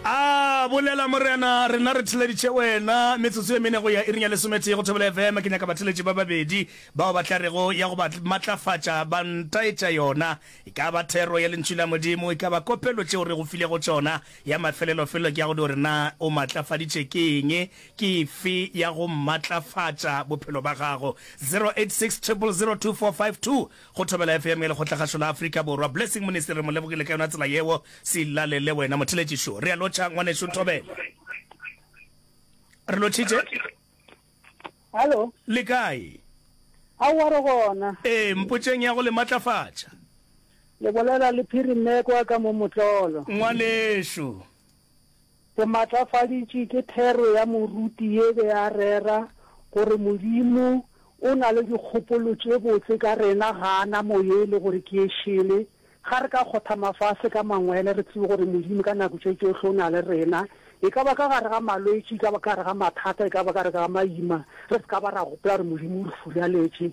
a bolela morena rena re theleditše wena metsotso ye mene go ya iring ya lesometee go thobela fm ke nyaka batheletši ba babedi bao ba tla rego ya go ba matlafatša ba ntaetša yona e ka ba thero ya lentšu la modimo e ka ba kopelo tšeo re go file go tšona ya mafelelo felelo ke ya go di gore na o matlafaditše ke eng ke fe ya go matlafatša bophelo ba gago 086 0002452 Go thobela FM ya Lekgotlagašo la Afrika Borwa. Blessing Monesty re mo lebogile ka yona tsela yeo. Sillale le wena motheletši šo. Re a lotšha ngwanešu Thobela. Re lotšhitše. Hallo. Le kae? Aowa re gona. Ee, mpotšeng ya go le matlafatša. Le bolela le Phiri Mmekwa ka mo Motlolo. Ngwanešu. Ke maatlafaditše ke thero ya moruti ye be a rera gore Modimo o na le dikgopolo tše botse ka rena ga a na moye e le gore ke e šele. Ga re ka kgotha mafase ka mangwele re tsebe gore Modimo ka nako tše tšohle o na le rena, e ka ba ka gare ga malwetši, e ka ba ka gare ga mathata, e ka ba ka gare ga maima, re se ka ba ra gopola gore Modimo o re furaletše.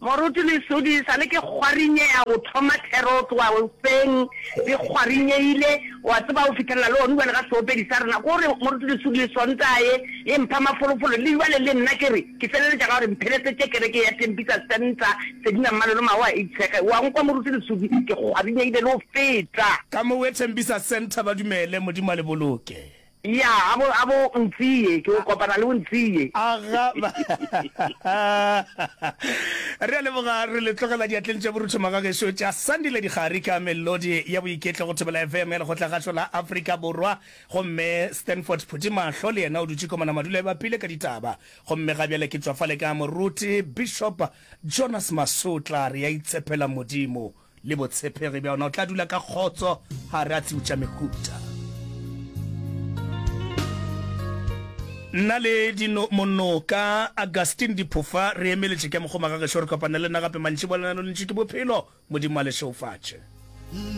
Moruti Lesodi, sa le ke kgwarinyeya go thoma thero o tloga goseng di kgwarinyeyile, o a tseba o fihlelela le one bjale ga seopedi sa rena. Ko re Moruti Lesodi Sontaga ye e mpha mafolofolo le bjale le nna ke re ke feleletša ka gore mphelesetše kereke ya Tembisa Centre Sedina Mmalo le Magoa a itshege. O a nkwa Moruti Lesodi, ke kgwarinyeyile le go feta. Ka mo we Tembisa Centre ba dumele, Modimo a le boloke. Ya, a bo, a bo Ntsiye, ke go kopana le bo Ntsiye. Aga, ba, re a leboga, re le tlogela diatleng tša borutho magagešo tša Sandile Dikgari ka melodi ya boiketlo go Thobela FM ya Lekgotlagašo la Afrika Borwa. Gomme Stanford Phuthimahlo le yena o dutše komana madulo e bapile ka ditaba. Gomme ga bjale ke tšwa fale ka moruti Bishop Jonas Masotla, re a itshepela Modimo. Le botshepegi bja ona, o tla dula ka kgotso gare a tšiutša mehuta. Nna le dino monoka Augustine Diphofa re emeletše ke mokgoma ga gešo re kopane le nna gape mantšiboa le na lo lentši ke bophelo Modimo a le šeufatše.